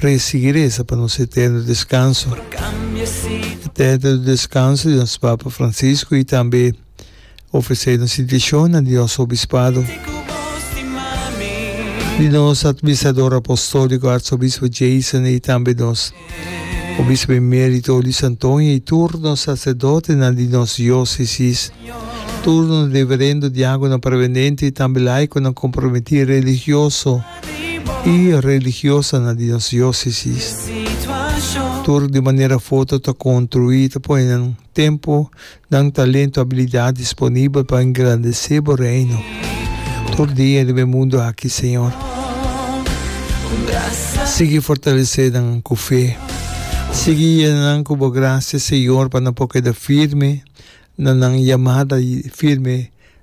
Rei sigui reza pa nos eterno descanso. Eterno descanso di nos Papa Francisco y tambe ofrece nos intencionnan di nos Obispado, di nos Adminstrador Apostolico Arzobispo Jason y tambe nos Obispo Emerito Luis Antonio y tur nos Sacerdotenan di nos Diocesis, tur nos Reverendo, Diagonan, Prevenente y tambe Laiconan comprometi religioso. i religiosanan di nos diósesis tur di manera foto ta konstruí ta pone nan tempu, nan talentu, abilidat disponibel pa engrandesé Bo Reino tur dia riba e mundu aki, Señor. Sigui fortalesé nan ku fe. Sigui yena nan ku Bo grasia, Señor, pa nan por keda firme na nan yamada i firme.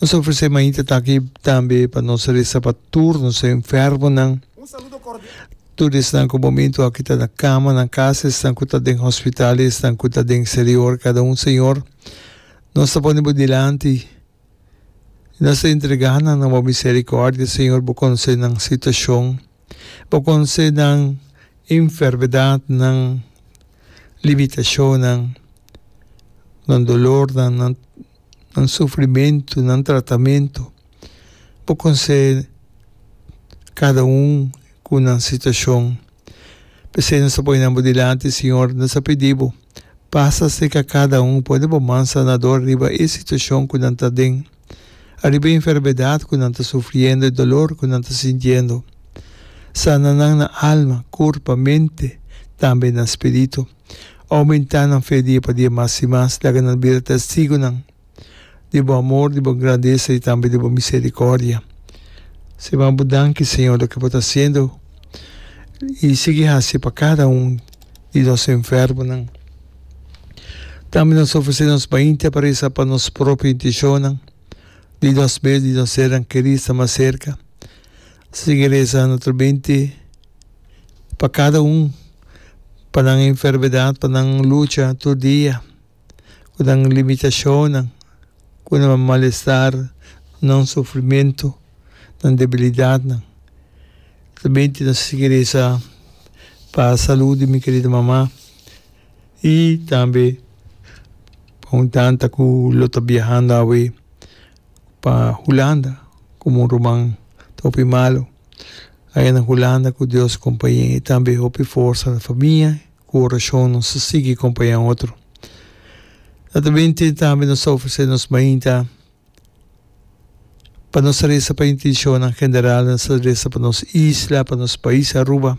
Nos ta ofresé mainta ta aki tambe pa nos resa pa tur nos enfermonan. Tur esnan ku momentu aki ta na kama nan kas, esnan ku ta den hospital i esnan ku ta den eksterior, kada un Señor, nos ta pone bo dilanti i nos ta entregá nan na bo miserikòrdia, Señor. Bo konosé nan situashon, bo konosé nan enfermedat, nan limitashonnan, nan dolornan, nan nan sufrimentu, nan tratamentu, bo konsé kada un ku nan situashon. P'esei nos ta pone nan bo dilanti, Siñor, nos ta pidi bo, pasa serka kada un, pone bo man sanadó riba e situashon ku nan ta den, ariba e enfermedat ku nan ta sufriendo, e dolor ku nan ta sintiendo. Sana nan na alma, kurpa, mente, tambe na spiritu. Oumentá nan fe dia pa dia mas i mas. Laga nan bira testigunan di bo amor, di bo grandesa i tambe di bo miserikòrdia. Siman bo danki, Señor, loke bo ta hasiendo i sigui hasi pa kada un di nos enfermonan. Tambe nos ofresé nos mainta pa resa pa nos propio intenshonnan, di nos mes, di nos sernan kerínan mas serka. Sigui resa notro mente. pa kada un, pa nan enfermedad, pa nan lucha tur dia, ku nan limitashonnan, ku nan malestar, nan sufrimentu, nan debilidadnan. Solamente nos a sigui resa pa salud di mi kerida mama i tambe pa un tanta ku lo ta biahando awe. pa Hulanda komo un ruman ta hopi malu. Aya na Hulanda ku Dios kompañ'é i tambe hopi forsa na famia ku orashon nos ta sigui kompañá un otro. Ta ta bin tin tambe nos ta ofresé nos mainta pa nos resa pa intenshonnan general, nos ta resa pa nos isla, pa nos pais Aruba.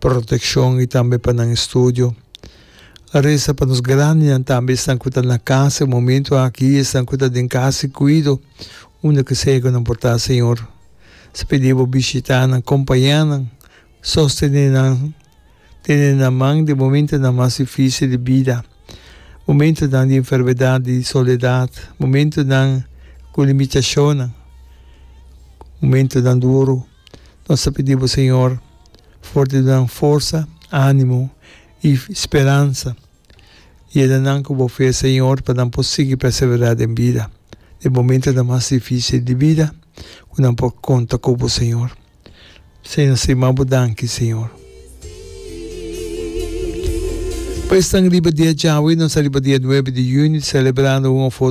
protekshon i tambe pa nan estudio. A resa pa nos grandinan tambe, esnan ku ta na kas e momentu aki, esnan ku ta den kas i kuido, unda ke sea ku nan por ta, Señor. Sa pidi Bo bishitá nan, kompañá nan, sostené nan, tene nan man den momentunan mas difísil di bida, momentunan di enfermedat, di soledat, momentunan ku limitashonnan, momentunan duru. Nos ta pidi bo, Señor, for di nan forsa, animo i speransa. Yeda nan ku bo fe, Señor, pa nan por sigui perseverá den bida, den momentonan mas difisil di bida, ku nan por konta ku bo, Señor. Señor, nos ta yama bo danki, Señor. Pa esnan riba dia djawe, nos ta riba dia nuebe di yüni selebrando un òf otro.